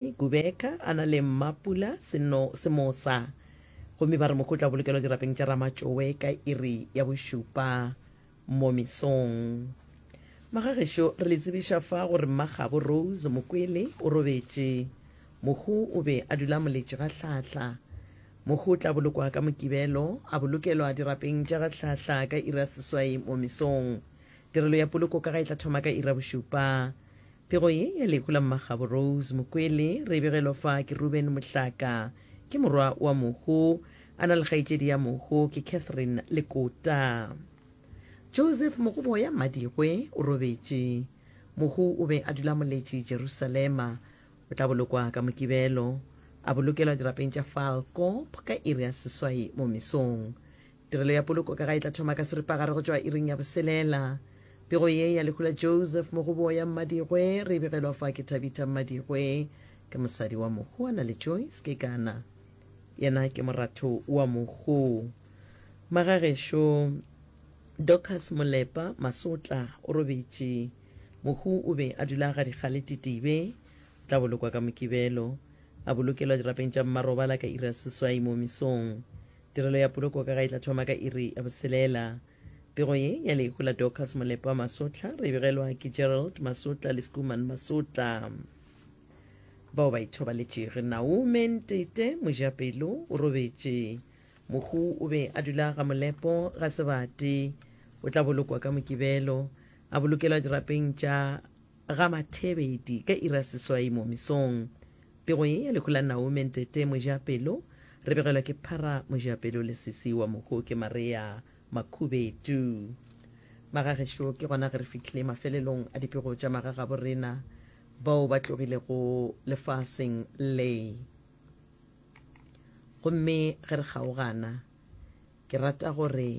Nkubeka a na le Mmapula Seno Semosa gomme ba re mokgwa o tla bolokelwa dirapeng tša Ramatšowe ka iri ya bošupa mo mesong. Magagešo re le tsebiša fa gore Mmagabo Rose Mokwele o robetše. Mokgwa o be a dula moletše ga Hlahla. Mokgwa o tla bolokwa ka Mokibelo, a bolokelwa dirapeng tša ga Hlahla ka iri ya seswai mo mesong. Tirelo ya poloko ka ga e tla thoma ka iri ya bošupa Pego ye ya lehu la Mmagabo Rose Mokwele re e begelwa fa ke Reuben Mohlaka. Ke morwa wa Mohu. A na le kgaetšedi ya Mohu, ke Catherine Lekota. Joseph Mogoboya Mmadigwe o robetše. Mohu o be a dula Moletši, Jerusalema. O tla bolokwa ka Mokibelo. A bolokelwa dirapeng tša Falkop ka iri ya seswai mo mesong. Tirelo ya poloko ka ga e tla thoma ka seripagare go tšwa iring ya boselela. Pego ye ya lehu la Joseph Mogoboya Mmadigwe re e begelwa fa ke Thabitha Mmadigwe. Ke mosadi wa mohu a na le Joyce Kekana. Yena ke moratho wa mohu. Magagešo Dorcas Molepa Masotla o robetše. Mohu o be a dula ga Dikgale Titibe. O tla bolokwa ka Mokibelo. A bolokelwa dirapeng tša mmarobala ka iri ya seswai mo mesong. Tirelo ya poloko ka ga e tla thoma ka iri ya boselela. Pego ye ya lehu la Dorcas Molepa Masotla re e begelwa ke Gerald Masotla le Skuman Masotla bao ba ithobaletšego. Naume Ntete Mojapelo o robetše. Mohu o be a dula ga Molepo ga Sebate. O tla bolokwa ka Mokibelo, a bolokelwa dirapeng tša Ga Mathebedi ka iri ya seswai mo mesong. Pego ye ya lehu la Naume Ntete Mojapelo re begelwa ke Phara Mojapelo le sesi wa mohu ke Marea Makhubedu. Magagešo ke gona ge re fihlile mafelelong a dipego tša magagabo rena bao ba tlogilego lefaseng le. Gomme ge re kgaogana Ke rata gore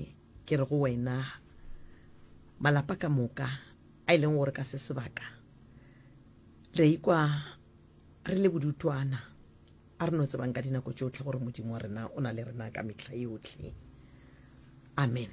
ke re go wena, malapa ka moka a e leng gore ka se sebaka re a ikwa re le bodutwana, a re no tsebang ka dinako tšohle gore Modimo wa rena o na le rena ka mehla yohle. Amen.